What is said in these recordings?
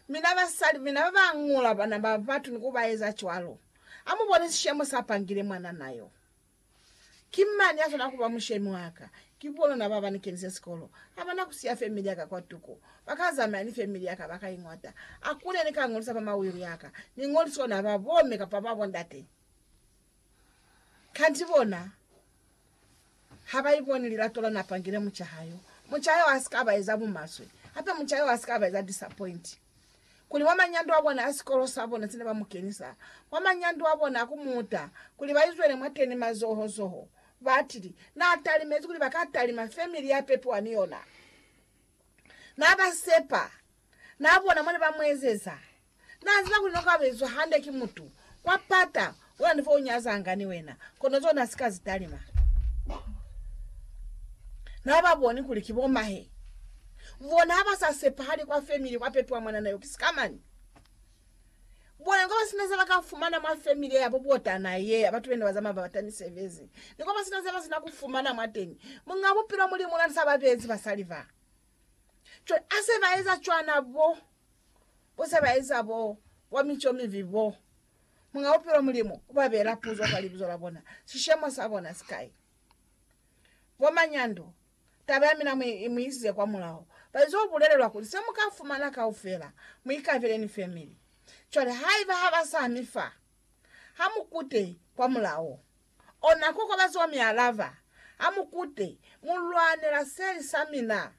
Mina basali, mina babañula bana ba batu ni kubaeza cwalo, amuboni sishemo sa pangile mwanana yo? Ki mani yaswanela kuba mushemi waka? Ki bonona baba ni kenise sikolo. Abana kusiya family yaka kwatuko. Baka zamaya ni family yaka baka iñwata. Akuna yene ka ngolisa fa ma will yaka. Ni ngolisa ona ba bo me kapa ba bo ndate. Kanti bona ha ba iboni lilato la na fangile mucaha yo. Mucaha yo a si ka ba eza bumaswe. Hape mucaha yo a si ka ba eza disappoint. Kuli mwa manyando a bona a sikolo sa bona se ne ba mu kenisa mwa manyando a bona a ku muta kuli ba izwele mwateni mazoho zoho, batili na talimezi kuli ba ka talima family ya pepiwa ni yona. Na ba sepa, na bona mone ba mu ezeza. Na ziba kuli noka bezwa hande ki mutu kwa pata ona ni fo u nyazanga ni wena, kono zona na si ka zi talima. Na ba boni kuli ki bo mahe. Bona ha ba sa sepahali kwa family kwa pepiwa mwanana yo ki sikamani. Bona ni kwa ba sina zeba ka fumana mwa family ya bo botana ye ya batu bene ba zamaya ba bata misebezi. Ni kwa ba sina zeba sina ku fumana mwateñi. Muñ'a Bupilo Mulimu ona ni sa ba bezi basali ba. Cwale ase ba eza cwana bo, bo se ba eza bo kwa mico mibi bo, Muñ'a Bupilo Mulimu u ba beela puzo kwa libizo la bona, sishemo sa bona si kai? Bo manyando, taba ya mina mu, mu isize kwa mulaho. Ba izo bulelelwa kuli, Se mu ka fumana kaufela, mu ikabele ni family. Cwale haiba ha ba sa mi fa, ha mu kute kwa mulao. Ona kokobazo wa mi alaba, Ha mu kute, mu lwanela seli sa mina.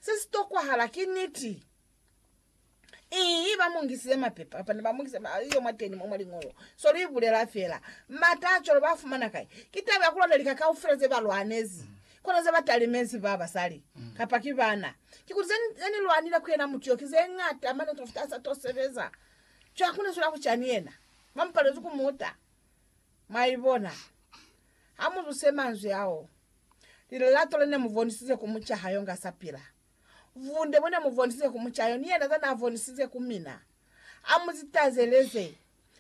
Se si tokwahala ki niti. Ii, ba mu ngisize mapepa, kapa ne ba mu ngisize ma, iyo mwateni mwa, mwa liñolo. So lu ibulela fela. Mata a cwalo ba fumana kai? Ki taba ya ku lwana lika kaufela ze ba lwanezi. Kono ze ba talimezi ba basali, kapa ki bana. Kikuli ze, ze ni lwanile ku yena mutu yo, ki ze ñata mane ku fita ha sa to sebeza. Cwale ku lisu la kucani yena ba mupalezi ku muta. Mwaibona? Ha mu zuse manzwi ao, lilelato le ne mu bonisize ku muca ha yo nga sa pila, vunde bo ne mu bonisize ku muca yo, ni yena za na bonisize ku mina. A mu zitazeleze.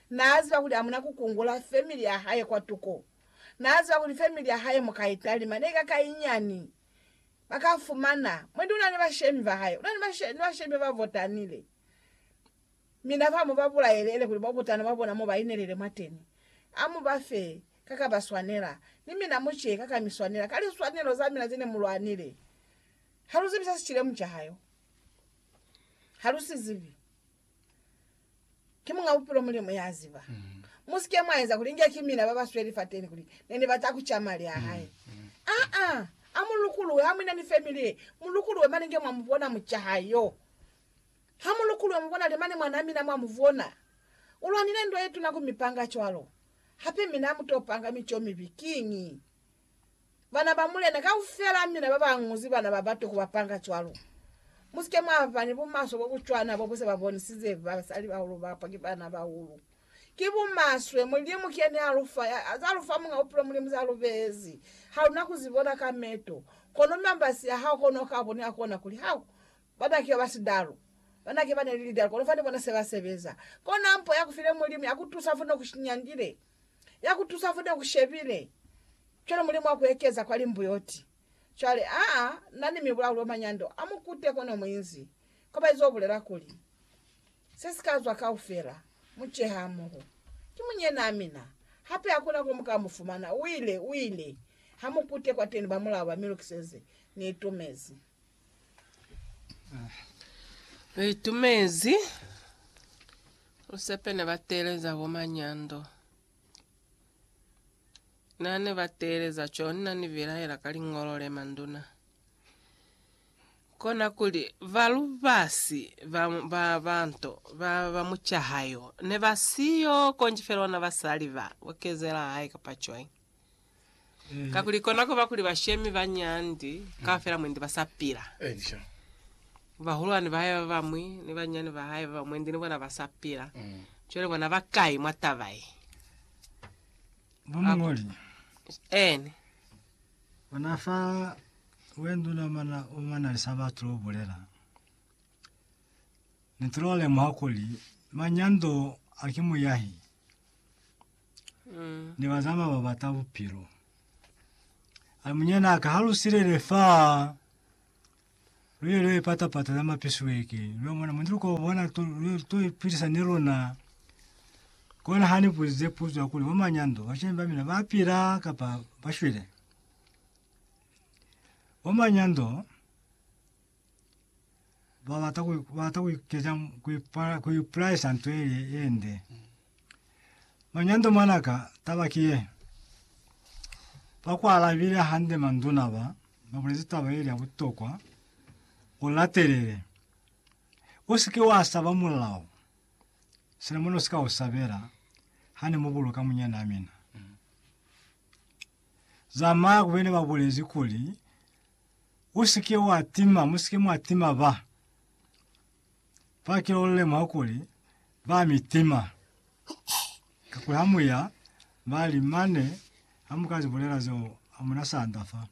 Na ziba kuli amuna ku kungula family ya hae kwatuko. Na ziba kuli family ya hae mu ka i talima, ne i ka ka inyani. Ba ka fumana. Mwendi una ni bashemi ba hae, una ni, bashe, ni bashemi ba ba votanile. Mi na fa mu ba bulaele, ele kuli bo butana bwa bona mo ba inelele mwateni. A mu ba fe ka ka ba swanela, ni mina mu ce ka ka mi swanela, ka liswanelo za mina ze ne mu lwanile. Ha lu zibi se si cile mu caha yo. Ha lu si zibi. Ki Muñ'a Bupilo Mulimu ya ziba. Mu si ke mwa eza kuli inge ki mina ba ba sweli fateni kuli ne ni bata ku ca mali a hae. Aa! A mu lukuluhe, ha mu ina ni family ye, mu lukuluhe mane inge mwa mu bona mu caha yo. Ha mu lukulwa mu bonale mane mwanaa mina mwa mu vona. U lwanile ndwa ye tuna ku mi panga cwalo. Hape mina mu to panga mico mibi. Kiñi? Bana ba mulena kaufela mina ba ba ñuzi bana ba batu ku ba panga cwalo. Mu si ke mwa ba ni bumaswe bo bu cwana bo bu se ba bonisize basalibahulu ba pa ki baana-bahulu. Ki bumaswe Mulimu ki yene a lu fa, ya, za lu fa Muñ'a Bupilo Mulimu za lu beezi. Ha lu na ku zi bona ka meto, kono mambasi a hao kono u ka boni ha kona kuli hao Bataki baba sidalu banake bane ni lidalu kono fane bona seba sebeza. Kona mpo ya kufile Mulimu ya kutusa fane ukushinyangile, ya kutusa fane ukushebile, cwale Mulimu wa kuekeza kwa limbuyoti. Cwale, aa, na ni mibulauli omanyando a mukute kono muinzi kobaiza ubulela kuli, Se si ka zwa kaufela, mu cehe hamoho. Ki munyenaa mina. Hape hakuna ko mu ka mu fumana. Uile, uile ha mukute kwateni, bamulao ba mi lukiseze, ni itumezi. Lu itumezi lusepe ne ba teeleza bo Manyando. Na ne ba teeleza co na ni bilaela ka liñolo le manduna. Kona kuli ba lubasi ba, ba, ba nto, ba, ba mucahayo ne ba siyo konji fela ona basali ba, bo kezela hae kapa cwañi. Kakuli kona kuba kuli bashemi ba nyandi kaufela mwendi ba sa pila. Bahulwani ba hae ba bañwi ni banyinyani ba hae ba bañwi mwendi ni bona ba sa pila. Cwale bona ba kai mwa taba ye? Bo muñoli, Eeni. bona fa wenduna mana o mana li sa batu lo bulela, Ni tolo lemuha kuli manyando a ki muyahi. ne ba zama ba bata bupilo. A munyana ka ha lu silele fa lu ye lu ipata pata za mapisweke lu mona mundlu ko bona to lu to ipilisa ni lona kona ha ni buzize puzo kuli bo manyando ba shemba mina ba pila kapa ba shwele. Bo manyando ba bata ku ba bata ku ikeza ku ipala ku iplaisa nto ile ende manyando manaka taba kiye bakwala bile hande manduna ba babulezi taba ile ya butokwa ulatelele usike wa saba mulao sina muno sika u sabela hane mu boloka munyana mina zamaya kubene babulezi kuli Usike wa tima, musike mwa tima ba ba kila ulemuha kuli ba mi tima. Kakuli ha mu ya, ba li, Mane, ha mu ka zi bulela zeo, ha mu na sanda fa.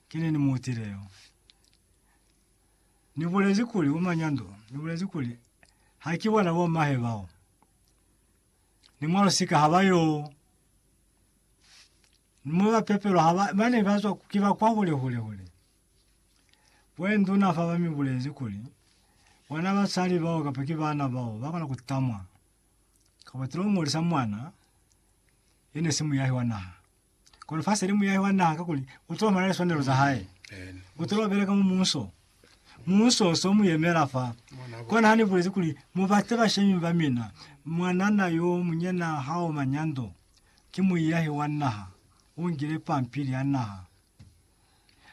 Ki nini mu utile yo? Ni bulezi kuli, Bo Manyando, ni bulezi kuli, Ha ki bona bo mahe bao. Ni mwa lusika ha ba yo. Ni mwa ba pepelwa ha ba, ba ne ba zwa ki ba kwa hule hule hule. Kwe nduna fa ba mi bulezi kuli, Bana basali bao kapa ki bana bao ba kona ku tamwa, kapa tilo ngolisa mwana ye ne si muyahi wa naha. Kono fa seli muyahi wa naha kakuli u tilo ba na liswanelo za hae. U tilo beleka mu munso. Munso so mu yemela fa. Kona ha ni bulezi kuli, Mu bate bashemi ba mina, mwanana yo munyena ha o manyando. Ki muiyahi wa naha u ngile pampili ya naha.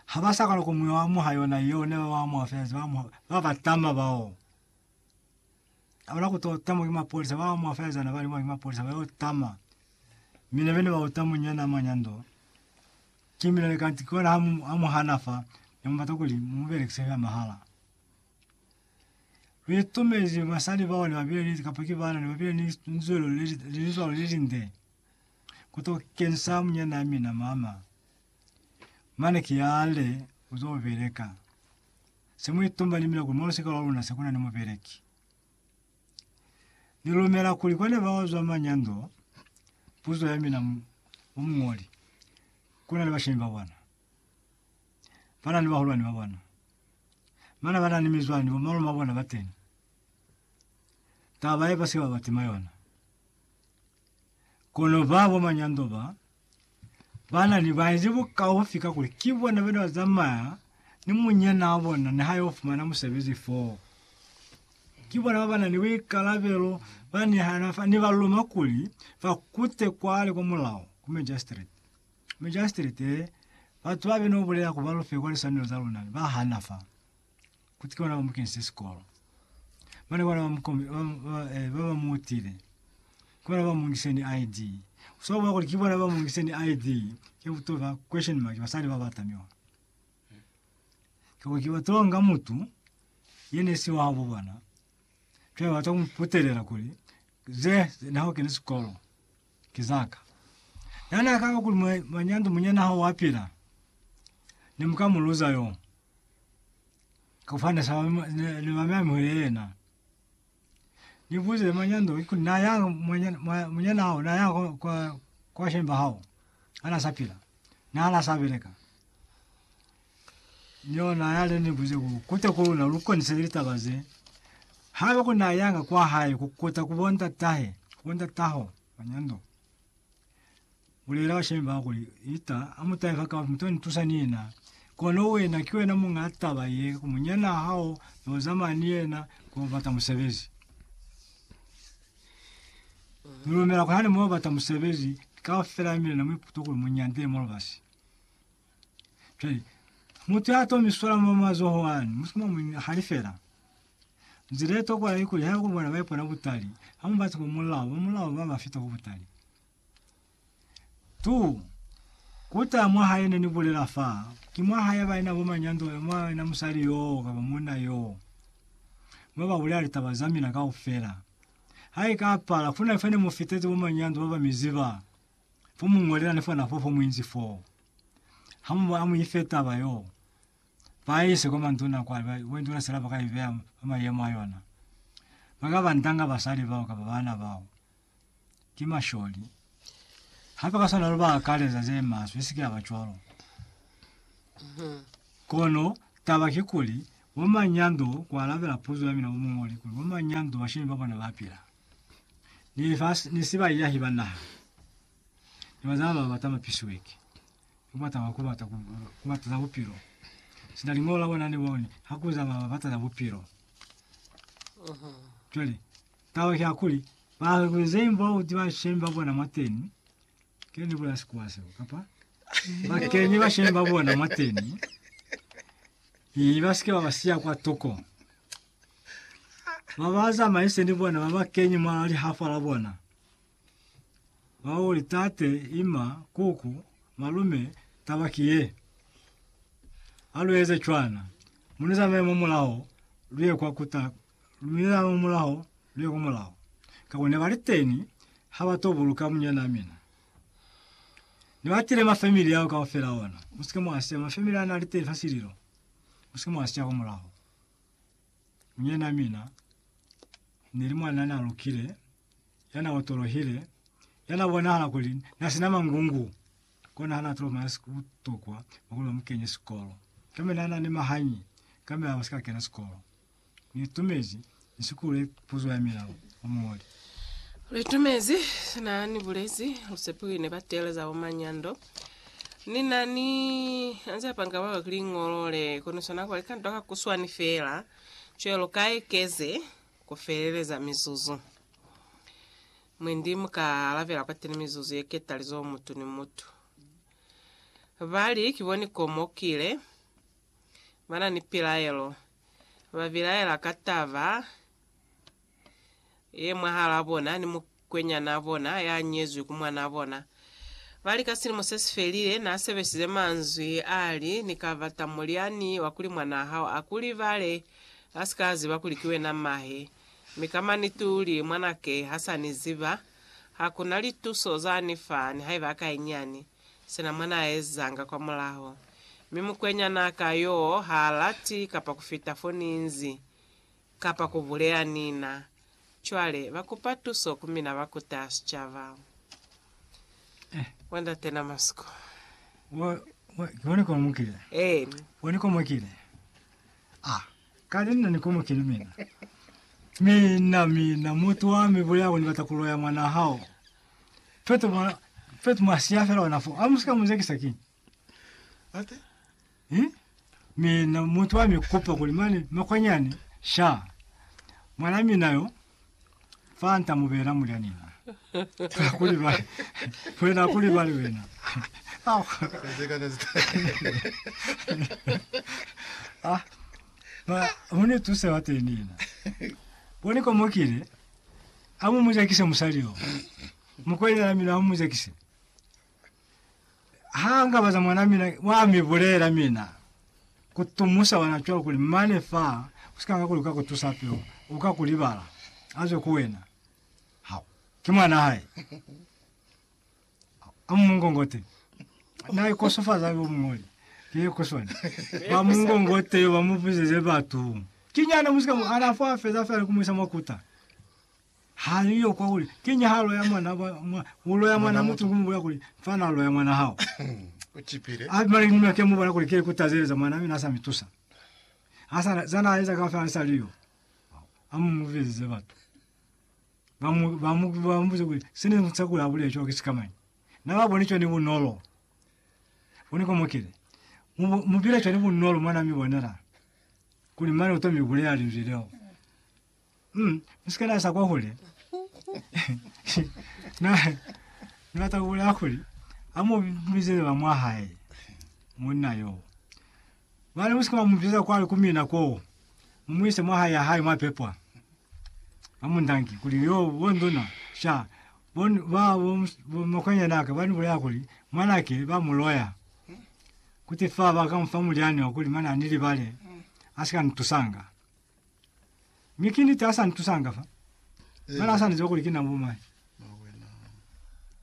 Ha ba sa kona ku mu amuha yona yeo ne ba ba amuha fela ze ba amuha ba ba tama bao. Ha bana ku to tamwa ki mapolisa ba amuha fela zana ba li mwa ki mapolisa ba yo tama. Mi ne bene ba uta munyana mwa nyando. Ki mina ne kanti ki ona ha mu amuhana fa ne mu bata kuli mu mu belekise fela mahala. Luitumezi basali bao ne babile ni, kapa ki baana, ne babile ni linzwelo le, linzwalo le linde kuto kensa munyanaa mina mama. Mane ki yaale, Uzo beleka. Se muitumba ni mina kuli mwa lusika lwa luna se kuna ni mubeleki. Ni lumela kuli kwani bao zwa manyando, puzo ya mina mu, mu muñoli, kuna ni bashemi ba bona. Bana ni bahulwani ba bona. Bana bana ni mizwani, bo malume ba bona bateni. Taba ye basike ba ba tima yona. Kono ba bo manyando ba, bana ni ba ezi bukaufi ka kuli ki bona bene ba zamaya ni munyana wa bona ni ha yo fumana musebezi foo. Ki bona ba bana ni buikalabelo ba nihana fa ni ba luma kuli ba kute kwale kwa mulao, ku magistrate. Mujasitirite, batu ba be no bulela ku ba lufe kwa liswanelo za luna ne ba hana fa kuti ki bona ba mu kenisile sikolo. Ba ne bona ba mu kombi, ba, ba, eh, ba ba mu utile. Ki bona ba mu ngise ni ID. U swa bua kuli ki bona ba mu ngise ni ID, ke ku to ba question mark, basali ba ba tamiwa. Kakuli ki ba to nga mutu ye ne si wabo bona, cwale ba to mu putelela kuli, Ze, ze, na ha u keni sikolo. Ki za ka. Yani ha kaba kuli mwa, mwa nyandu munyana hao wa pila, ne mu ka mu luza yo. Ka kufana ne sa ne, ne ba mi amuhele yena. Ni buze mwa nyandu ki kuli na ya mwa, mwa munyana hao na ya kwa, kwa, kwa shemba hao ha na sa pila, na ha na sa beleka. Yona yale ni buze ku kuta ku luna lu koniseli litaba ze. Haiba ku na yanga kwa hae ku kuta ku bo ndatahe, bo ndataho ba nyando, bulela bashemi ba kuli, Ita, amutahe fa ka muto ni tusa ni yena. Kono wena ki wena munga taba ye, ku munyana hao yo zamaya ni yena ko bata musebezi. Ni lumela kuli hane mo bata musebezi, kaufela ya mina na mu iputa kuli mu nyande mo lubasi. Cwale, mutu ya to mi swala mwa mazoho ani, mu si mwa mu halifela. Nzila ye tokola ki kuli, haiba ku bona ba ipona butali, ha mu bati ku mulao, ba mulao ba ba fita ku butali. Tu, kuta mwa hae ne ni bulela fa, ki mwa hae ba ina bo manyando, mwa ina musali yoo kapa munna yoo, mwa ba bulela litaba za mina kaufela. Ha i ka pala, kuna fa ne mu fitezi bo manyando ba ba mi ziba, Fo mu ñolela ni fona fo fo mu inzi foo. Ha mu ba mu ife taba yoo, ba ise kwa manduna kwale, ba, manduna sela ba ka i beya fa mayemo a yona. Ba ka ba ndanga basali bao kapa baana bao. Ki masholi. Hape ka swana lu ba akaleza ze maswe, i si ke ya ba cwalo. Kono taba kikuli, bo manyando, ku alabela puzo ya mina bo muñoli, kuli bo manyando bashemi ba bona ba pila. ni lifasi ni sibaiyahi ba naha ni bazalana ba bata mapisiweki ni kubata ba kubata ku, kubata za bupilo sina lingolo la bona ni boni hakuza ba bata za bupilo jwale taba ke akuli ba kuzeim ba uti ba shem ba bona mwateni ke ni bula sikuwa seo kapa ba kenye ba shem ba bona mwateni i ba sike ba ba siya kwa toko Ba ba zamaise ni bona ba ba kenye mwa lihafa la bona, ba o li, Tate, ima, kuku, malume, taba ki ye. Ha lu eze cwana. Mu ni zamaye mwa mulaho, lu ye kwa kuta, lu ni zamaye mwa mulaho, lu ye kwa mulaho. Kako ne ba li teni, ha ba to buluka munyanaa mina. Ne ba tile ma family ao kaufela ona. Mu si ke mwa siya ma family a na li teni fa sililo. Mu si ke mwa siya kwa mulaho. Munyina mina ne li mwan'a na lukile, ya na otolohile, ya na bonahala kuli na si na mangungu, kono ha na tolo maya si butokwa mwa kuli ba mu kenye sikolo. Kambe na na ni mahanyi, kambe a si ka kena sikolo. Ni itumezi ni si kule puzo ya mina, o muñoli. Litumezi sina ni bulezi lusepiwi ne ba teeleza bo manyando. Ni na ni anzi apanga ba bakili ngolo le kono sona kwa likanto ka kuswani fela cwe lu ka ekeze ku feleleza mizuzu. Mwendi mu ka alabela kwa teni mizuzu ye ketali zo mutu ni mutu. Ba li ki bo ni komo kile ba na ni pilaelo, ba bilaela ka taba ye mwahalaa bona ni mukwenyanaa bona ya nyezwi ku mwanaa bona. Ba li ka silimo se si felile, na sebesize manzwi a li, Ni ka bata mulyani wa kuli mwanaa hao a ku libale, a si ka ziba kuli ki wena mahe. Mi ka maniti u li, Mwanake ha sa ni ziba, ha ku na lituso za ni fa, nihaiba a ka inyani. Sina mwa na ezanga kwa mulaho. Mi mukwenyanaa ka yoo ha lati kapa ku fita fo ni nzi. Kapa ku buleya Nina. Cwale, ba kupa tuso ku mina ba kuta sicaba. Mwa ndate na masiku. Eeni. Ah, kale nina ni komokile mina. Mina, mina, mutu wa mi buleya kuli ni bata ku loya mwana hao. Fetu, fetu mwa siya fela ona foo. Amu sika mu zekisa kiñi? Ate? Eh? Mi na mutu wa mi kupa kuli mane makwanyani sha mwana mina yo fa nta mu bela mulya nina. Fa kuli ba wena kuli ba le wena. Ah. Ba mune tuse wa te nina. Boni ko mokile amu mujakise musali yo. Mukwanyana mina amu mujakise. ha nga baza mwana mina wa mi bulela mina ku tumusa wana cwa kuli mane fa usika nga kuli ka ku tusa peo u ka ku libala aze ku wena ha ke mwana hae a mungongote na i kosofaza yo mungoli ke ku sona ba mungongote ba mu buzeze batu kinyana musika ana fa feza fa ku muisa makuta Ha li yo kwa kuli, Ki nyahalo ya mwana ba mwa, u loya mwana mutu ku mu bulela kuli, Mfana loya mwana hao. U cipile. A bimana linuna ke mu bona kuli ke ku tazeleza mwana mi na sa mi tusa. Ha sa, za na eza kaufela li sa li yo. A mu mu bizize batu. Ba mu, ba mu, ba mu buze kuli, Se ne ni sa kuli a bulele cwalo ki sikamañi. Na ba boni cwani bunolo. Boni ko mo kile. Mu, mu bile cwani bunolo mwa na mi bonela. Kuli mane u to mi bulela Linzwi leo. Mm, usika nasa kwa hule. Na ni batla ku bolela kuli a mo bizele ba mwa hae monna yo. Ba le musika ba mo bizela kwa ku mina ko. Mu muise mwa hae ya hae mwa pepwa. Ba mo ndangi kuli yo bo ndona sha bon ba bo mus- bo makwanya naka ba ni bolela kuli mwana ke ba muloya. Kuti fa ba ka mfa mulyani wa kuli mana ni libale asika ntusanga. Mi ki niti asa ntusanga fa. Mara asa niziba kuli kina bumai.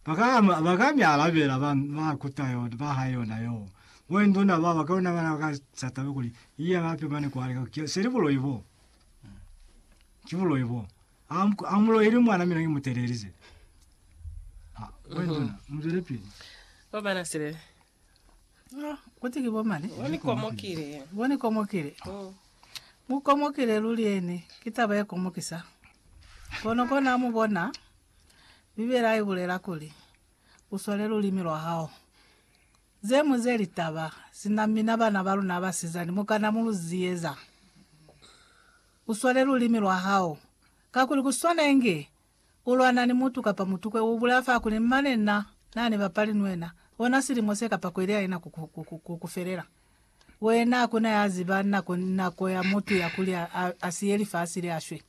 Baka baka mi alabela ba ba kuta yo ba ha yona yo. Mwe nduna ba baka ona bana baka satabe kuli iya bape mane kwale ka seli bulo ibo. Kibulo ibo. Am amulo ili mwana mina ngimutelelize. Mwe nduna mzwele pili. Obana sile No, kuti ki bo mani? Bo ni komokile. Bo ni komokile. Mm. Mu komokile luli eni. Ki taba ye komokisa. Kono kona mu bona, Bibela i bulela kuli, U swale lulimi lwa hao. Ze mu ze litaba, sina mina bana ba luna basizani mu kana mu lu ziyeza. U swale lulimi lwa hao. Kakuli ku swana inge Ku lwana ni mutu kapa mutukwe u bulaya fa kuli, Mane na na ni bapali ni wena ona silimo se kapa kweli haina ku ku felela. Wena hakuna ya ziba nako ni nako ya mutu ya kuli a siye lifasi le a shwe.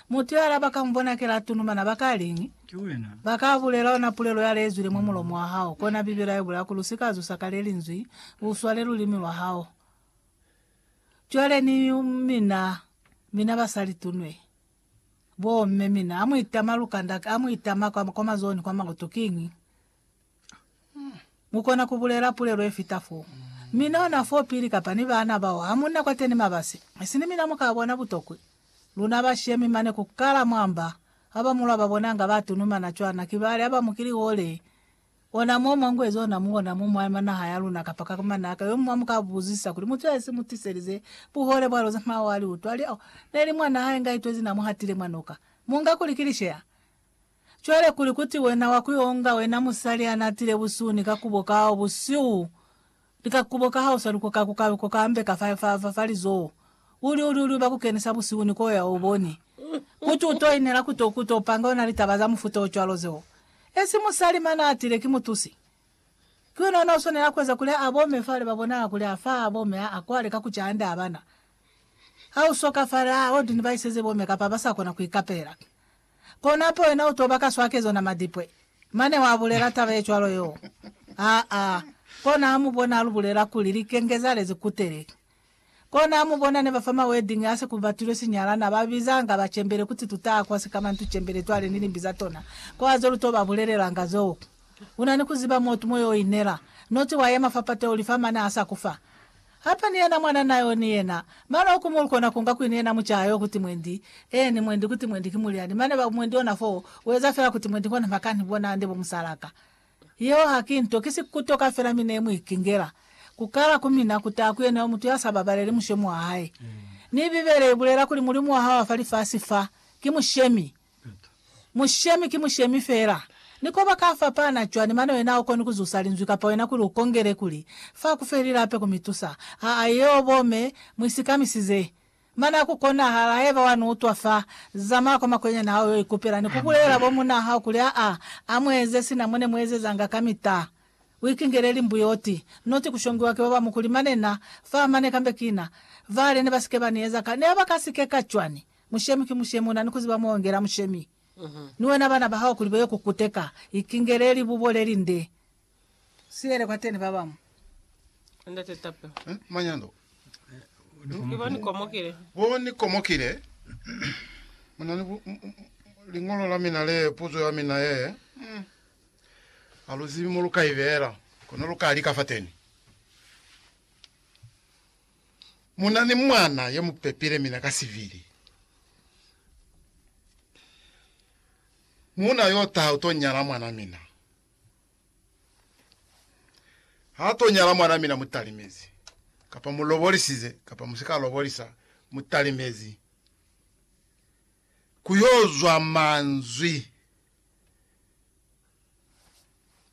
Mutu yale ha ba ka mu bona kela a tunumana, ba ka liñi? Ba ka bulela ona pulelo yale i zwile mwa mulomo wa hao. Kona Bibele ha i bulaya kuli, U si ka zusa ka le linzwi, u swale lulimi lwa hao. Cwale ni mina, mina basali tunwe. Bo mme mina amu itama lukanda amu itama kwa kwa mazoni kwa makutu kiñi? Mukona kubulela pulelo yefita fo. Mina hona fo pili kapa ni baana bao hamuna kwateni mabasi. Isini mina muka bona butokwi. Luna bashemi mane kukala mwamba, haba mulwa babona nga ba tunumana cwana kibali haba mukili hole Ona mo mwa ngwezi ona mu ona mo mwa ma naha ya luna kapa ka manaka yo mwa mu ka buzisa kuli, Mutu ya isi mu tiselize buhole bwa loze mwa wa li utwa? Li, Oh, ne li mwa naha inga itwezi na mu hatile mwa noka. Mu nga kuli ki lisheya? Cwale kuli kuti wena wa ku yo nga wena musali ya na tile busuni ka kubo kao busihu, Lika kubo ka hao sa lukoka ku ka lukoka ambe ka fa, fa, fa, fa lizoho. U li, u li, u li uba ku kenisa busihu ni ko ya, u boni. Kuti u to inela ku to, ku to panga yona litaba za mufuta o cwalo zeo. Esi musali mane a tile, ki mutusi. Ki wena ona u swanela kueza kuli a bome fale, ba bonala kuli a fa, a bome, a, a kwale ka ku ca hande abana. Ha u so ka fale, a, o di ni ba iseze bome kapa ba sa kona ku ikapela. Konapo wena uto baka swakezo na madipwe. Mane wa bulela taba ye cwalo yo. Aa. Kona amu bona alu bulela kuli likenge za lezi kutele. Kona amu bona ne ba fa ma wedding asi ku batilwe sinyalana ba bizanga ba cembele kuti tutaa kwa sikamantu cembele twale ni limbi za tona. Ko azo lu to ba bulelelanga zoo. Una ni kuziba motu mo yo inela. Noti wa yema fa pate uli fa mane asa kufa. Hapa ni yena mwana na yo ni yena. Mane oku mulu kona kunga kwini yena mucaha yo kuti mwendi, eeni, mwendi kuti mwendi ki mulyani, mane ba mwendi ona foo, ueza fela kuti mwendi kona makani bona nde bo musalaka. Yeo ha ki nto, ki si kutoka fela mi ne mu ikingela. Ku kala ku mina ku taha ku yena yo mutu ya sa babaleli mushomi wa hae. Mi Bibele i bulela kuli Mulimu wa hao wa fa lifasi fa, ki mushemi. Mushemi ki mushemi feela. Ni koba ka fapana cwani mane wena ha ukoni ku zusa linzwi kapa wena kuli u kongele kuli, Fa ku feli lape ku mi tusa. Aa, yeo bo me mu isikamisize. Mane ha ku konahala, haiba wa ni utwa fa, zamaya kwa makwenyani hao yo ikupela ni ku bulelela bo munaa hao kuli, Aa, a mu eze sina mo ne mu ezezanga kamita. U ikingele limbu yo ti. Noti ku shongiwa ki babamu kuli, Mane na fa, mane kambe kina. Vale ne ba si ke ba ni eza ka. Ne ba ka si ke ka cwani? Mushemi ki mushemi, una ni kuziba muongela mushemi. Ni wena bana ba hao kuli baye ku kuteka, ikingele libubo leli nde, silele kwa teni ba bamu. Ndate Tapelo. Eh, manyando. Ki bo ni komokile. Bo ni komokile. Muna ni bu, lingolo la mina le, puzo ya mina ye. Mm. Ha lu zibi mo lu ka ibela, kono lu ka lika fa teni. Mu na ni mwana ye mu pepile mina ka sivili. Muuna yo taha u to nyala mwana mina. Ha to nyala mwana mina mu talimezi. Kapa mu lobolisize kapa mu si ka lobolisa, mu talimezi. Ku yo zwa manzwi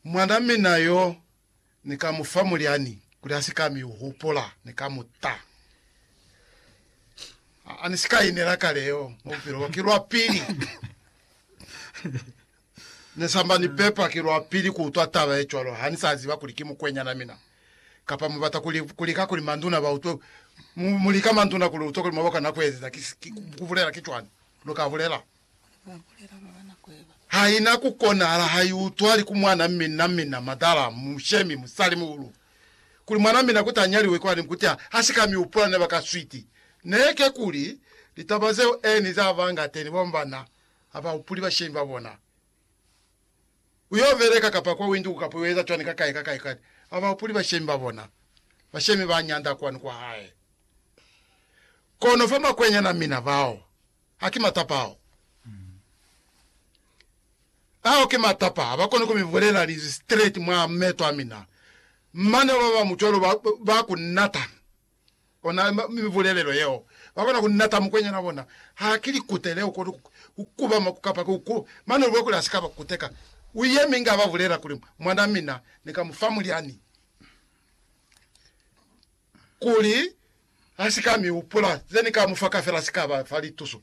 mwana mina yo Ni ka mu fa mulyani kuli a si ka mi hupula. Ni ka mu ta. A ni si ka inela kale yo mwa bupilo bwa. Ki lwa pili ne samba ni pepa, ki lwa pili ku utwa taba ye cwalo. Ha ni sa ziba kuli ki mukwenyana mina. Kapa mu bata kuli, ku lika kuli manduna ba utwe, mu, mu lika manduna kuli utwe kuli mwa ba kona ku ezeza. Ki, ki, ku bulela ki cwani lu ka bulela. Haina ku konahala ha i utwali ku mwana mina mina madala mu shemi musali muhulu kuli mwana mina kuti a nyaliwe kwani kuti a si ka mi hupula ne ba ka switi ne ke kuli litaba zeo eni za banga teni ba bana ha ba hupuli bashemi ba bona ku yo beleka kapa kwa winduku kapa u eza cwani ka kai ka kai kwani ha ba hupuli bashemi ba bona bashemi ba nyanda kwani kwa hae kono fa makwenyana mina bao A ki matapa ao. Ao ki matapa a ba koni ku mi bulela linzwi straight mwa meto a mina. Mane ba bamu cwalo ba, ba ku nata. Ona mibulelelo yeo. Ba kona ku nata mukwenyana wa bona. Ha ki likutele, u koni ku, ku kubama ku kapa ku ku. Mane u lube kuli a si ka ba kuteka. U yemi inge a ba bulela kuli, Mwanaa mina, ni ka mu fa mulyani. Kuli Ha si ka mi hupula, ze ni ka mu fa kafela si ka ba fa lituso.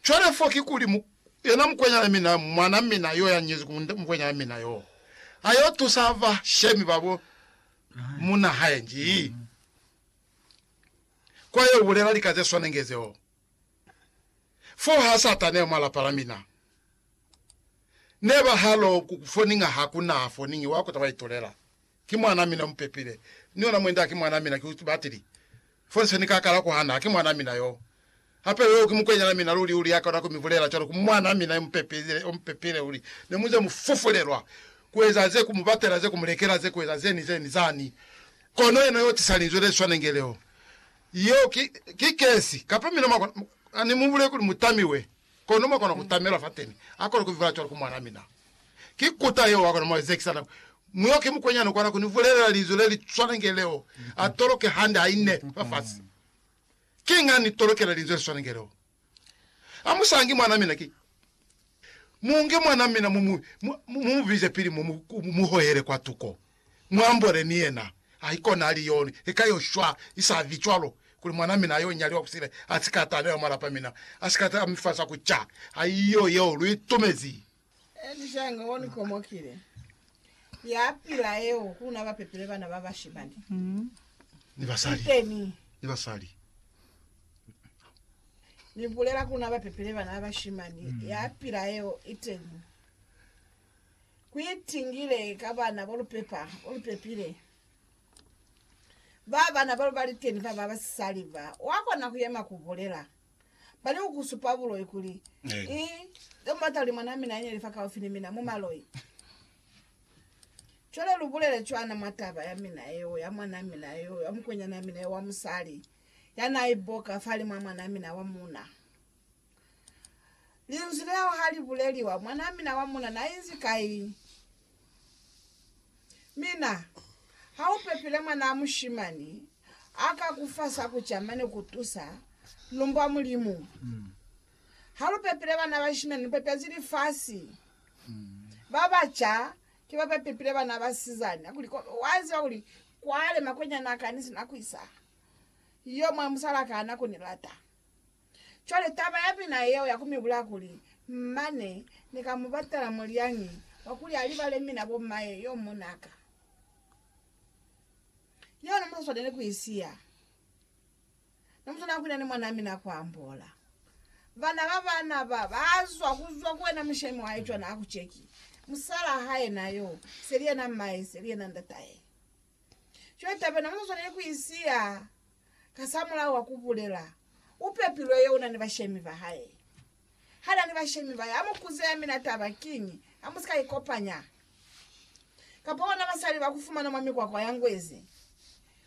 Cwale fo ki kuli, mu, yena mukwenyana mina, mwana mina yo ya nyezi ku mukwenyana mina yo, a yo tusa bashemi ba bo munna hae nji? Kwa yo bulela lika ze swanenge zeo. Fo ha Satana yo mwa lapa la mina. Ne ba halo ku ku foninga, ha ku na foningi wa ku ta ba itulela. Ki mwanaa mina mupepile, ni yona mwenda haki mwanaa mina, ki batili. Fo se Ni ka kala kuhana, haki mwanaa mina yoo. Hape yoo ki mukwenyanaa mina luli luli ya kona ku mi bulela cwalo ku mwanaa mina yo mupepile, yo mupepile luli. Ne mu ze mu fufulelwa ku eza ze, ku mu batela ze, ku mu lekela ze, ku eza ze ni ze ni zani. Kono yena yoo tisa linzwi le swanenge leo, yoo ki, ki kesi. Kapa mina mwa kona, Ni mu bulele kuli mu tamiwe. Kono mwa kona ku tamela fateni a kona ku vivala cwalo ku mwan'a mina. Ki kuta yeo a kona mwa zekisa nako. Mu yo ki mukwenyana u kona ku ni bulelela linzwi le li swana nge leo, a toloke hande ha ine fafasi. Kiñi a ni tolokela linzwi le swana nge leo? A mu sangi mwan'a mina ki. Mu nge mwan'a mina mu mu bize pili mo mu hohele kwatuko. Muambole ni yena. Haikona ali yo ni lika yo shwa, isavi cwalo, kuli mwana mina yo nyaliwa kusile asika atabela mwa lapa mina asika ta mi fa sa ku ca. Haiyo yeo lu itumezi. Elishainga o ni komokile, ya pila yeo ku na ba pepile bana ba bashimani ni basali, iteni ni basali. Ni bulela ku na ba pepile bana ba bashimani, ya pila yeo, iteni. Ku itingile ka bana bo lu pepa, bo lu pepile. Ba bana ba lu ba liteni ba ba basisali ba, wa kona ku yema ku bulela. Ba li ku ku supa buloi kuli, Eh. I, nge mu bata kuli mwanaa mina a nyeli fakaufi ni mina, mu maloi. Cwale lu bulele cwana mwa taba ya mina yeo, ya mwanaa mina yo, ya mukwenyanaa mina yo wa musali, ya naa iboka fali mwa mwanaa mina wa muuna. Linzwi leo ha li buleliwa, mwanaa mina wa muna na inzi kai? Mina, ha u pepile mwanaa mushimani, a ka ku fa sa ku ca mane ku tusa, lumbwa Mulimu. Ha lu pepile bana bashimani, lu pepezi lifasi. Ba ba ca ki ba ba pepile bana basizani. Hakuli, ko, wa ziba kuli kwale makwenyana a ka ni si na ku isa. Yo mwa musal'a ka na ku ni lata. Cwale taba ya mina yeo ya ku mi bulaya kuli, mane Ni ka mu batela mulyangi wa kuli a libale mina bo m'maye yo muna ka. Yeo ne mu sa swaneli ku i siya. Ne mu swanela ku ina ni mwanaa mina kwa ambola. Bana ba bana ba ba zwa ku zwa ku wena mushemi wa hae cwana ha ku ceki, musalaa hae na yo, seli yena m'maye, seli yena ndatahe. Cwale taba eno mu sa swaneli ku i siya. Kasamulaho wa kubulela, upepilwe yo unani bashemi bahae. Hanani bashemi bahae, amukuze ya mina taba kiñi, amusika ikopanya kapa ona basali bakufumana mwa mikwakwa ya ngwezi.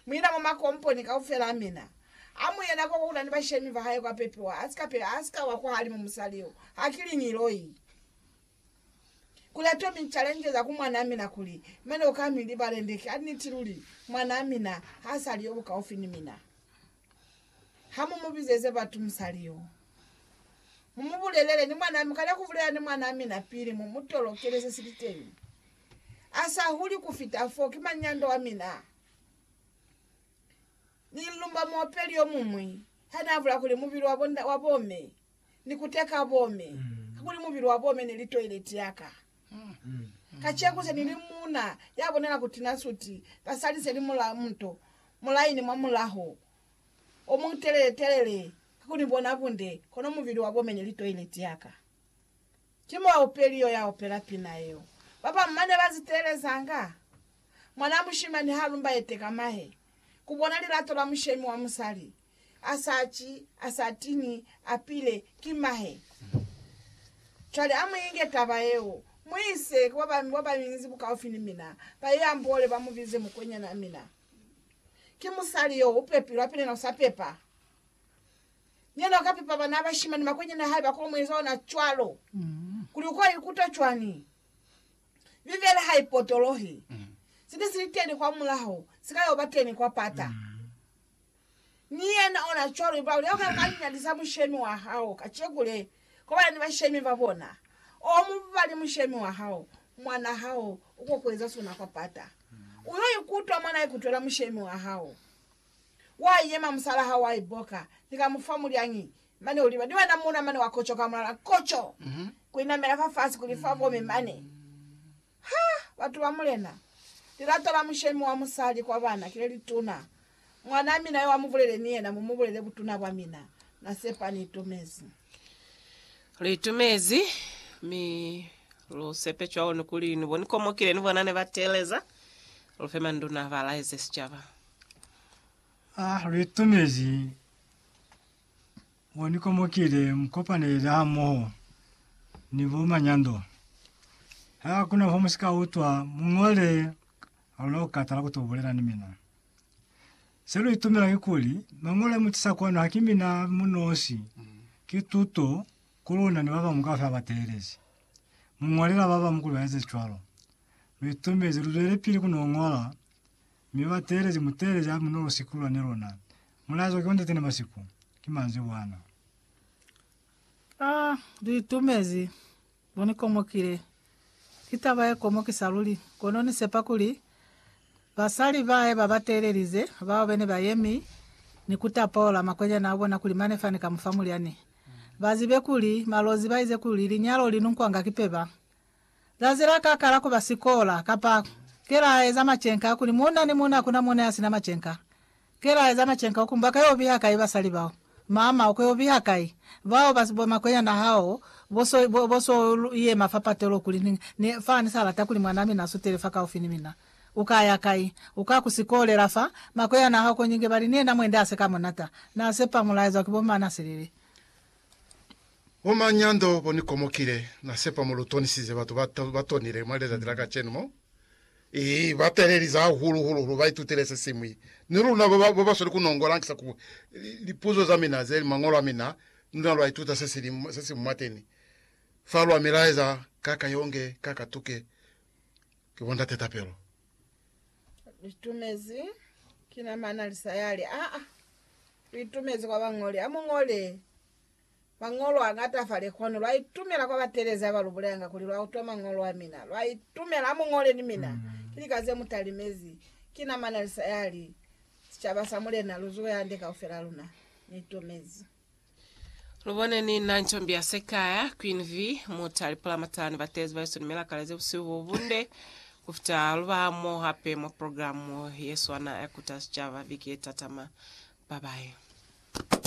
Muina mwa makomponi kaufela amina, amuye nako kwa unani bashemi bahae kwa pepiwa, asika wa kwahalimu musali yo, hakili ngiloi. Kulata mi challenge za ku mwanaa mina kuli, Mane uka mi libale nde ki a niti luli, mwanaa mina ha sa li yo bukaufi ni mina. Ha mu mu bizeze batu mu sa li yo. Mu mu bulelele ni mwanaa mi, kana ku bulela ni mwanaa mina pili mu mu tolokele se si li teñi. A sa huli ku fita fo, ki manyando wa mina. Ni lumba muopeli yo muñwi ha na bula kuli mubili wa bo, wa bo me ni kuteka bome, kakuli mubili wa bome neli toileti yaka. Kaceku se nili muuna yabonela ku tina suti, basali seli mula muto, mulaini mwa mulaho omutelele telele kakuli ni bona bunde, kono mubili wa bome neli toileti yaka. Ki muaupeli yo ya opela pina yeo. Babamu mane ba ziteelezanga. Mwanaa mushimani ha lumba yeteka mahe, kubona lilato la mushemi wa musali, a sa ci, a sa tini, a pile, ki mahe. Cwale a mu inge taba yeo, mu ise ku ba ba bañinzi bukaufi ni mina, ba ye amboole, ba mu bize mukwenyanaa mina. Ki musali yo, u pepilwe, hape ni yena u sa pepa. Ni yena u ka pepa bana ba bashimani, makwenyani a hae ba ko mu eza ona cwalo. Kuli u ko ikuta cwani? Bibele ha i potolohi. Se ne si li teni kwamulaho, si ka yo ba teni kwa pata. Ni yena ona cwalo, mba ulya uka kanyanyalisa mushemi wa hao kaceku le, kobana ni bashemi ba bona. O mubali mushemi wa hao, mwan'a hao uko kueza sona kwa pata. U yo ikutwa mwan'a ikutwela mushemi wa hao. Wa yema, musal'a hao wa iboka, ni ka mu fa mulyangi, mane u liba ni wena muuna mane wa kocoka mulala, koco! ku inamela fafasi kuli fa kome mane. Ha batu ba Mulena! Lilato la mushemi wa musali kwa bana kile lituna. Mwanaa mina yo amubulele ni yena, mumubulele butuna bwa mina. Na sepa ni itumezi. Lu itumezi, mi lu sepe cwalo ni kuli ni bo ni komokile ni bona ne ba teeleza. Lu fe manduna ba laeze sicaba. Ha lu itumezi. Mo ni komokile mu kopanele hamoho ni bo manyando. Ha ku na fo mu si ka utwa, mu ñole ha luna ku katala ku to bulela ni mina. Se lu itumela kikuli, Mañolo a mu tisa kwanu ha ki mina a mu nosi, ki tuto ku luna ni ba bañwi kaufela ba teelezi. Mu ñolela ba bañwi kuli ba eze cwalo. Lu itumezi, lu zwelipili ku n'o ñola. Mi ba teelezi muteelezi a munolo siku lwa ne lona mulaezwa ki wa Ntate ne masiku, ki manzibwana. A li itumezi, Lu ni komokile. Ki taba ye komokisa luli, kono ni sepa kuli basali bae ba ba teelelize, bao be ne ba yemi ni ku tapola makwenyani a bona kuli mane fani ka mu fa mulyani, ba zibe kuli malozi ba ize kuli linyalo li nunkwanga ki peba. Zazi la ka kala kuba sikola, kapa, Ke la eza macenka a kuli muuna ni muuna hakuna mone ya sina macenka. Ke la eza macenka oku mbaka yo biha kai basali bao. Mama, oko yo biha kai? Bao ba si bomakwenyana hao bo so, bo, bo so yema fa patelo kuli, Ni, ni, fa ni sa lata kuli mwan'a mina a sutele fa kaufi ni mina. U ka ya kai? U ka ku sikole la fa? Makwenyana hao ko nyinge bali ni yena mwende a se ka munata. Na sepa mulaezwa ki bo Manaselele. Bo manyando bo ni komokile, Na sepa mo lu tonisize batu ba, ba tonile mwa lezati la kacenu mo. I ba talelize hahulu hulu lu ba itutile se siñwi. Ni luna ba ba, ba ba sweli ku nongola, hankisa ku lipuzo za mina ze li Mañolo a mina, ni luna lwa ituta se si li, se si mwateni fa. Lwa mi laeza, Ka ka yonge, ka ka tuke, ki bo ndate tapelo. Litumezi, ki na mana li sa yali. Aa, lu itumezi kwa bañoli. Amu ñole mañolo a ñata fa lekwanu. Lwa itumela kwa batelezi aba lu buleyanga kuli lwa utwa mañolo a mina. Lwa itumela, amu ñole ni mina. Ki lika ze mu talimezi. Ki na mana li sa yali. Sicaba sa Mulena, lu zuwe hande kaufela luna. Ni itumezi. Lubone ni na ncombi ya sekaya, Queen V, muta lipulamatani batezi ba Yesu ni milakale ze busihu bo bunde kufita luba mo hape mwa programu ye swana ya kuta sicaba viki ye tatama. Bye bye.